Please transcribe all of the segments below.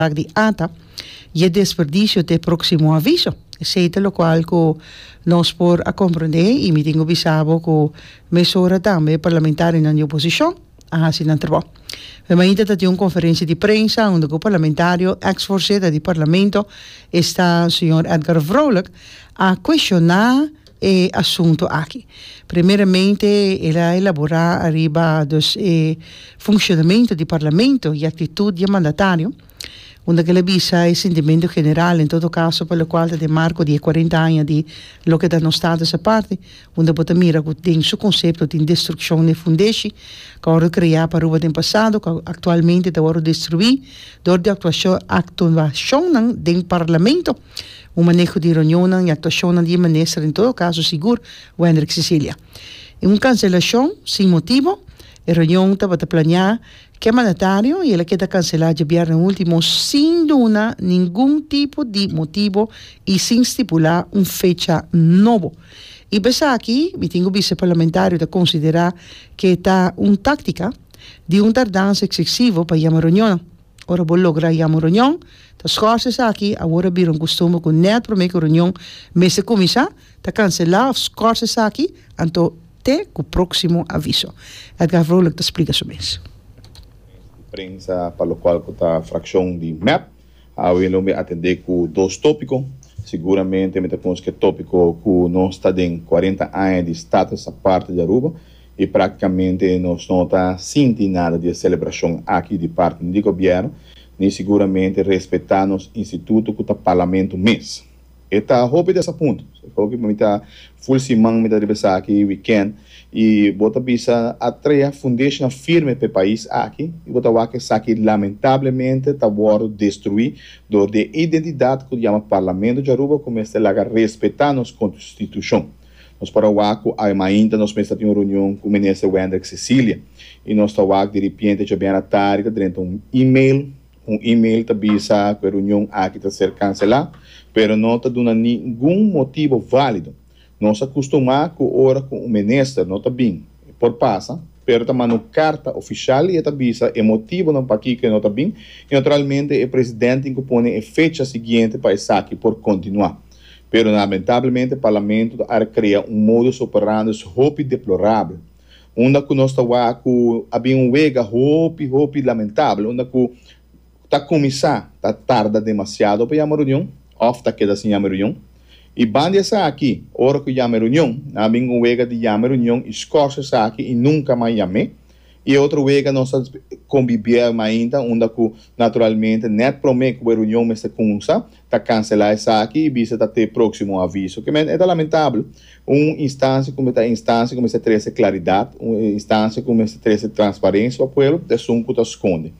Bak di ata y e desperdicio te proximo aviso. Esey ta locual cu nos por a comprende y mi tin cu bisa bo cu mesora tambe e parlamentarionan di oposicion a haci nan trabao. Fe mainta ta tin un conferencia di prensa unda cu parlamentario, ex voorzitter di Parlamento, esta señor Edgar Vrolijk, a cuestiona e asunto aki. Primeramente el a elabora ariba dus e funshonamentu di Parlamento i aktitut di e mandatario, unda ke el a bisa e sintimentu general en todo kaso pa lokual ta den marko di e kuarenta aña di loke ta nos Status Aparte, unda bo ta mira ku den su konsepto tin destrukshon den fundeshi ku a wòrdu kreá pa Aruba den pasado ku aktualmente ta wòrdu destruí dor di aktuashon aktuashonnan den Parlamento. Un maneho di reunionnan y actuacionnan di e Minister en todo caso sigur Wendrick Cecilia. En un cancelacion sin motibo, e reunion tabata planea ke mandatario y el a keda cancela djabièrnè ultimo sin duna ningun tipo di motibo y sin stipula un fecha nobo. Y pa esaki mi tin cu bisa e parlamentario ta considera ke ta un tactica di un tardansa excesivo pa yama reunionnan. Ora bo logra yama un reunion, ta schorse esaki, awor a bira un costumber cu net prome cu reunion mester cuminsa, ta cancela of schorse esaki, anto te cu proximo aviso. Edgar Vrolijk ta splica su mes. Conferencia de prensa pa locual cu ta fraccion di mep. Awe lo mi atende cu dos topico. Seguramente mi ta conusca e topico cu nos ta den cuarenta aña di status aparte di Aruba. I praktikamente nos no ta sinti nada di e selebrashon aki di parti di gobièrnu, ni siguramente respetá nos instituto ku ta parlamentu mes. E ta hopi des apunt. Hopi mi ta ful siman mi ta riba esaki wikènt i bo ta bisa a trea fundesha firme pa e pais aki i bo ta wak esaki lamentablemente ta wòrdu destruí dor di e identidat ku ta yama parlamentu di Aruba ku mester laga respetá nos konstitushon. Nos para wak ku ai mainta nos mester ta tin un reunion ku Minister Wendrick Cecilia i nos ta wak di ripiente dje bièna tardi ta drenta un email, un email ta bisa ku e reunion aki ta ser kanselá pero no ta duna ningun motibu válido. Nos a kustumá ku ora ku un minister no ta bin e por pasa pero ta manda un karta ofishal i e ta bisa e motibunan pakiko e no ta bin i naturalmente e presidente tin ku pone e fecha siguiente pa esaki por kontinuá. Pero lamentablemente Parlamento ta ara krea un modus operandus hopi deplorabel unda ku nos ta wak ku a bin un wega hopi hopi lamentabel unda ku ta kuminsá ta tarda demasiado pa yama reunion òf ta keda sin yama reunion i ban di esaki ora ku yama e reunion nan a bin ku un wega di yama e reunion i skòrse esaki i nunka mas yam'é i e otro wega nos ta kombibié mas ainda unda ku naturalmente nèt promé ku e reunion mester kuminsá. ta kanselá esaki i bisa ta te próksimo aviso. Ke men e ta lamentabel. Un instansia ku mester instansia ku mester trese klaridat, un instansia ku mester trese transparensia pa pueblo, ta esun ku ta skonde.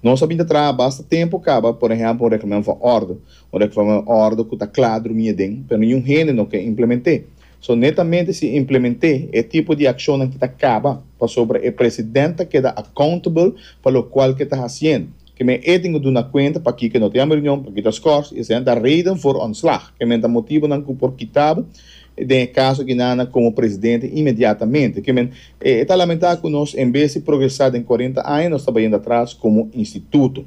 Nos a bin ta traha basta tempu kaba, por ehèmpel, un reglamento van òrdu, un reglamento van òrdu ku ta kla drumí aden, pero ningún hende no ke implement'é. So, netamente si implement'é, e tipo di akshonnan ki ta kaba, pasobra e president ta keda accountable pa lokual ke ta hasiendo. Ke men e tin ku duna kuenta pakiko e no tin amberunion, pakiko ta skors, i esei ta reden for ontslag. Ke men ta motibunan ku por kita bo den e kaso akinana komo presidente inmediatamente. Ke men e ta lamentá ku nos en bes di progresá den kuarenta aña nos ta bayendo atras komo instituto.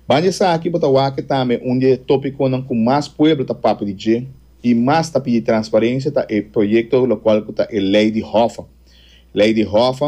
Ban di esaki bo ta wak ke tambe un di e topikonan ku mas pueblo ta papia di dje i mas ta pidi transparencia ta e proyekto lokual ku ta e lei di hòf. Lei di hòf.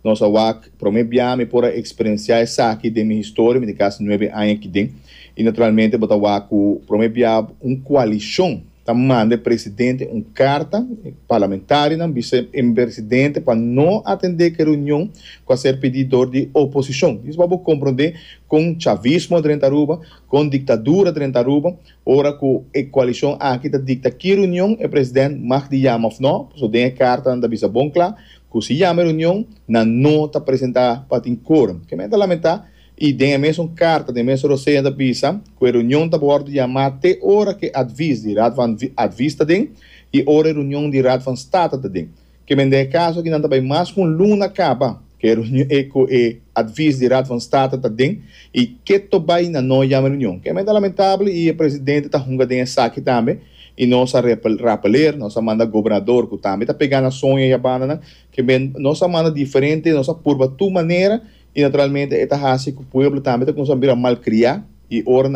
Nos a wak promé bia mi por a eksperensiá esaki den mi historia, mi tin kasi nuebe aña akiden, i naturalmente bo ta wak ku promé bia un koalishon ta manda e presidente un karta, e parlamentarinan bisa e presidente pa no atendé ke reunion ku a ser pidí dor di oposishon. Disa pa bo komprondé kon chavismo drenta Aruba, kon diktadura drenta Aruba, ora ku e koalishon aki ta dikta ki reunion e president mag di yama òf nò, pasobra den e kartanan ta bisa bon kla, Cu si yama e reunion nan no ta presenta pa tin quorum. Kemey ta lamenta y den e mesun carta den e mesun reseña ta bisa cu e reunion ta wordo yama te ora cu e advies di Raad van Advies ta den y ora e reunion di Raad van State ta den. Kemey den e caso aki nan ta bay mas cu un luna caba cu e reunion cu e advies di Raad van State ta den y ke to bay nan no yama e reunion. Kemey ta lamentable y e presidente ta hunga den esaki tambe. i nos a repeler, nos a manda gobernador cu tambe ta pega na soño e yabandanan, kembe nos a manda diferente, nos a purba tur manera, i naturalmente e ta haci cu pueblo tambe ta cuminsa bira malcria, i ora nan.